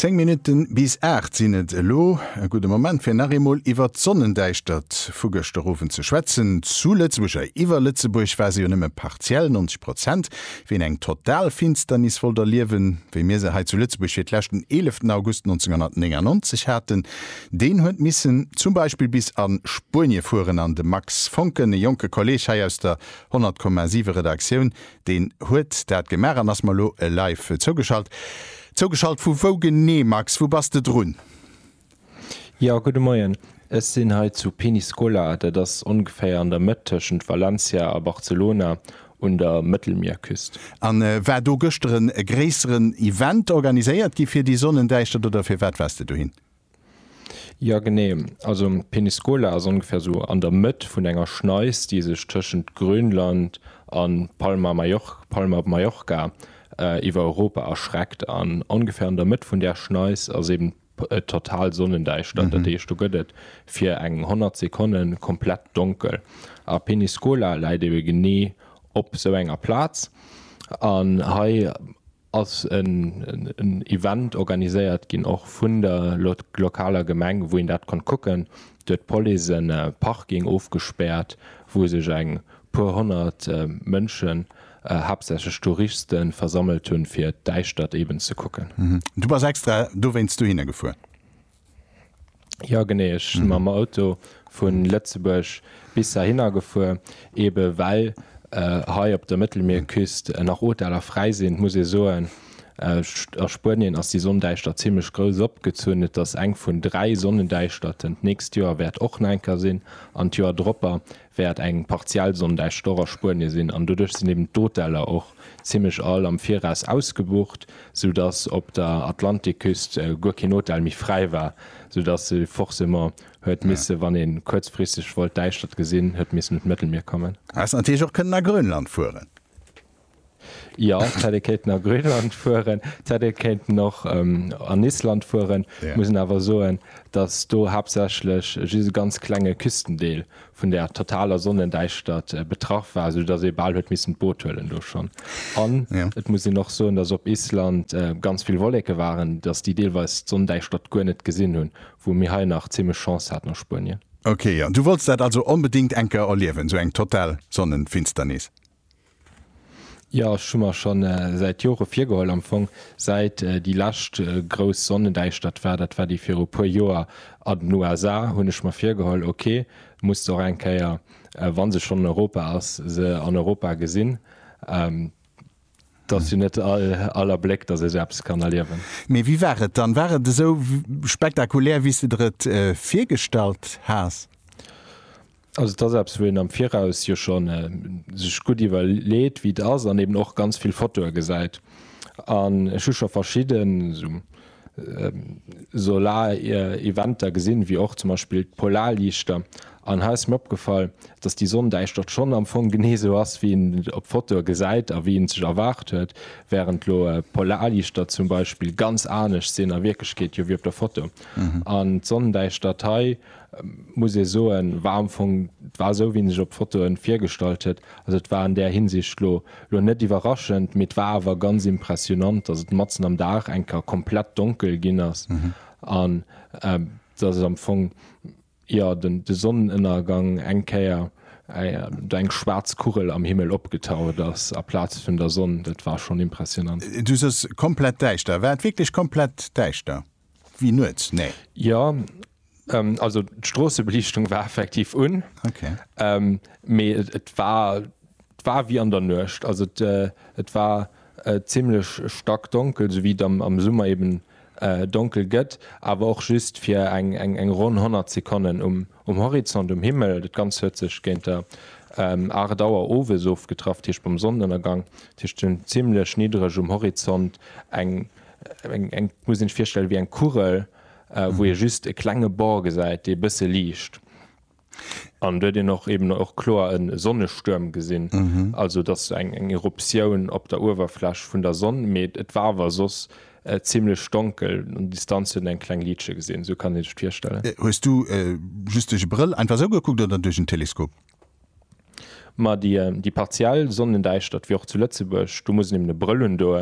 Zéng Minutten bis aacht sinn et elo. E gudde Moment fir nach eemol iwwert d'Sonnendäischtert vu gëschter Owend ze schwätzen. Zu Lëtzebuerg a iwwer Lëtzebuerg war se jo nëmme partiell, 90 Prozent. Ween eng total Finsternis wollt erliewen, wéi mir se hei zu Lëtzebuerg fir d'lescht den 11 August 1999 haten, deen huet missen zum Beispill bis a Spuenie fueren. An de Max Foncken, e jonke Kolleeg hei aus der 100,7 Redaktioun, Deen huet dat gemaach an ass mer elo live zougeschalt. Zougeschalt vu wou genee, Max? Wou bass de drun? Jo, gudde Moien. Ech sinn hei zu Peñíscola, dat ass ongeféier an der Mëtt tëschent Valencia a Barcelona un der Mëttelmierküst. A war do gëschter e gréisseren Event organiséiert gi fir déi Sonnendäischtert oder fir wat waars de dohin? Jo genee, also Peniscola ass ongeféier sou an der Mëtt vun enger Schneis déi sech tëschent Grönland an Palma op Mallorca iwwer Europa erschreckt. An ongeféier an der Mëtt vun där Schneis ass eben total Sonnendäischtert, dat heescht do gëtt et fir eng 100 Sekonne komplett donkel. A Peniscola läit ebe genee op sou enger Plaz an hei ass en Event organiséiert ginn, och vun der lokaler Gemeng, wou een dat konnt kucken. Do huet d'Police e Parking ofgespäert, wou sech eng puer honnert Mënschen, haaptsächlech Touristen, versammelt hunn, fir d'Däischtert eben ze kucken. Du bass extra dowéinst dohinner gefuer? Jo genee, ech si mam Auto vu Lëtzebuerg bis heihinner gefuer, eebe well hei op der Mëttelmierküst nach Hoteller fräi sinn. Muss ee soen, a Spuenien ass déi Sonndäischtert zimmlech grouss opgezunn. Et ass eng vun dräi Sonnendäischterten. D'nächst Joer wäert och nach eng Kéier sinn an d'Joer dropper. wäert eng partiell Sonn däischter och a Spuenie sinn an doduerch sinn eben d'Hoteller och zimmlech all am Viraus ausgebucht, sou dass op der Atlantikküst guer keen Hotel méi fräi war, sou dass ee forcément huet misse wann ee kuerzfristeg wollt d'Däischtert gesinn, huet missen un d'Mëttelmier kommen. Häss natierlech och kënnen a Grönland fueren. Ja Teddy kéinten a Grönland fueren, Teddy kéinten och ähm, an Island fueren. Ja. Muss en awer soen, datt do haaptsächlech just e ganz klenge Küstendeel vun der totaler Sonnendäischtert äh, betraff war, soudatt ee bal huet missen d'Boot huelen do schonn. An Ja. et muss een och soen, datt op Island äh, ganz vill Wolleke waren, datt déi deelweis d'Sonndäischtert guer net gesinn hunn, wou mir hei nach zimmlech Chance haten a Spuenien. Okay, an du wollts dat also onbedéngt eng Kéier erliewen, esou eng total Sonnenfinsternis? Jo, ech hu mer scho säit Jore virgeholl, am Fong säit déi lescht grouss Sonnendäischtert war, dat war déi viru puer Joer an den USA, hunn ech mer virgeholl, ok, muss se och eng Kéier, wa se schonn an Europa ass, se an Europa gesinn. Et ass jo net all Abléck, datt ee se eppes kann erliewen. Mee wéi war et dann? War et esou spektakulär, wéi s de der et virgestallt has? Also et ass eppes, wou een am Viraus jo schonn sech gutt iwwerleet, wéi et ass an eben och ganz vill Fotoe gesäit. An ech hu scho verschidden esou Solareventer gesinn, wéi och zum Beispill d'Polarliichter. An hei ass mir opgefall, dass déi Sonndäischtert schonn am Fong genee esou ass, wéi een et op Fotoe gesäit a wéi een et sech erwaart huet, wärend elo d'Polarliichter zum Beispill ganz anescht sinn a Wierklechkeet jo wéi op der Foto. An d'Sonndäischtert hei muss ee soen, war am Fong, et war esou, wéi en sech op Fotoen virgestallt huet. Also et war an där Hinsicht lo lo net iwwerraschend, mee et war awer ganz impressionant, dass et matzen am Dag eng Kéier komplett donkel ginn ass an dass et am Fong, jo, den de Sonnenënnergang eng Kéier do eng schwaarz Kugel am Himmel opgetaucht ass aplaz vun der Sonn. Dat war schonn impressionant. Du soos komplett däischter, war et wierklech komplett däischter? Wéi nuets? Nee. Jo, also d'Stroossebeliichtung war effektiv un, mee et war wéi an der Nuecht. Also et war zimmlech stackdonkel, esou wéi et am Summer eben donkel gëtt, awer och just fir eng ronn 100 Sekonnen um. Um Horizont, um Himmel, dat Ganzt huet sech géint der 8 Auer owes ofgetraff, dat heescht beim Sonnenënnergang. Dat heescht sinn zimmlech niddreg um Horizont eng, eng, muss een sech virstellen wéi eng Kugel, wou ee just e klenge Bord gesäit, dee e bësse liicht. An do huet een och eben och kloer e Sonnestuerm gesinn, also dass eng, eng Eruptioun op der Uewerfläch vun der Sonn, mee et war awer soss, Zimlech donkel, un Distanz huet een eng kleng Liitche gesinn, esou kann ee sech d'virstellen. Hues du just duerch e Brëll einfach esou gekuckt oder duerch en Teleskop? Ma déi partiell Sonnendäischtert wéi och zu Lëtzebuerg, do muss een eben e Brëll hunn, do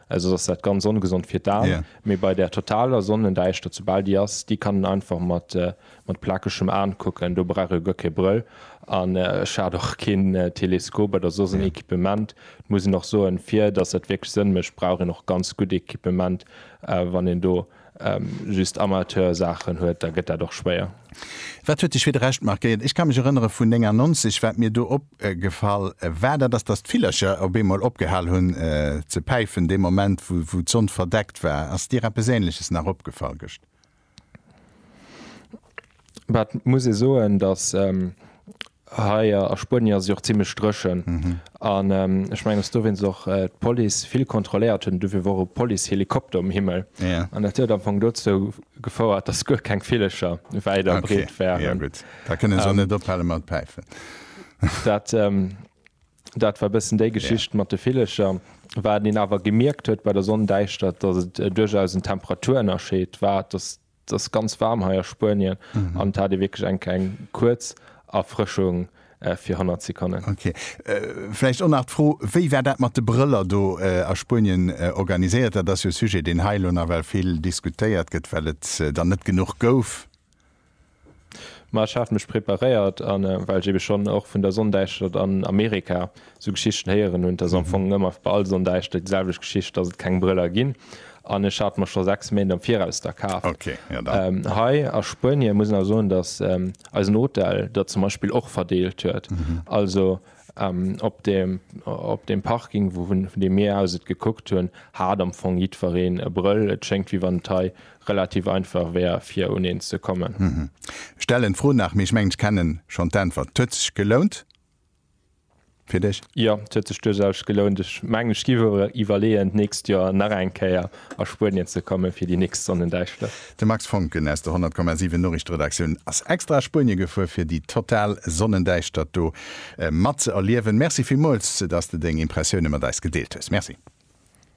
soss ass dat ganz ongesond fir d'Aen. Mee bei der totaler Sonnendäischtert, soubal déi ass, déi kann een einfach mat Mat plakegem Aan kucken, do brauch ee guer kee Brëll. An ech hat och keen Teleskop oder soss en Equipement. Et muss een och soen, fir dass dat wierklech Sënn mécht, brauch een och ganz gutt Equipement. Wann een do just Amateursaachen huet, da gëtt dat och schwéier. Wat huet dech fir de Rescht markéiert? Ech ka mech erënnere vun 99, wat mir do opgefall war, dat ass, dass d'Villercher op eemol opgehal hunn ze päifen, dee Moment, wou d'Sonn verdeckt war. Ass dir eppes Änleches nach opgefall gëscht? Mä et muss ee soen, datt hei a Spuenie ass et jo och zimlech dréchen an ech mengen, datt dowéinst och d'Police vill kontrolléiert huet an dofir wor och e Policehelikopter um Himmel an dat huet am Fong dozou gefouert, datt guer keng Villecher wäit a breet waren. Okay, jo gutt, da kënne se och net ophale mat päifen. Dat war e bëssen déi Geschicht mat de Villecher. Wat een awer gemierkt huet bei der Sonndäischtert, dass et duerchaus en Temperaturënnerscheed war. Et ass ganz waarm hei a Spuenien an et hat ee wierklech eng kleng kuerz Erfrëschung fir 100 Sekonnen. Ok. Vläicht och nach d'Fro, Wéi war dat mat de Brëller do a Spuenien organiséiert? Dat ass jo e Sujet, deen hei elo nawell vill diskutéiert gëtt, well et der net genuch gouf. Ma ech hat mech preparéiert an well ech eben schonn och vun der Sonndäischtert an Amerika esou Geschichten héieren hunn, et ass am Fong ëmmer bei all Sonndäischtert déi selwecht Geschicht, dass et keng Brëller ginn an ech hat mer scho 6 Méint am Viraus der kaf. Hei a Spuenie muss een awer soen, dass eisen Hotel der zum Beispill och verdeelt huet. Also op dem op dem Parking, vu deem mir aus et gekuckt hunn, hat am Fong jiddwereen e Brëll. Et schéngt wéi wann et hei relativ einfach wär fir un een ze kommen. Stellen d'Fro nach, mee ech mengen ech kennen schonn d'Äntwert. T'huet sech gelount fir dech? Jo, t'huet sech duerchaus gelount. Ech mengen ech giff awer iwwerleeën d'nächst Joer nach eng Kéier a Spuenien ze kommen fir déi nächst Sonnendäischtert. De Max Foncken aus der 100,7 Noriichteredaktioun ass extra a Spuenie gefuer fir déi total Sonnendäischtert do mat ze erliewen. Merci villmools dass de deng Impressioune mat eis gedeelt hues. Merci.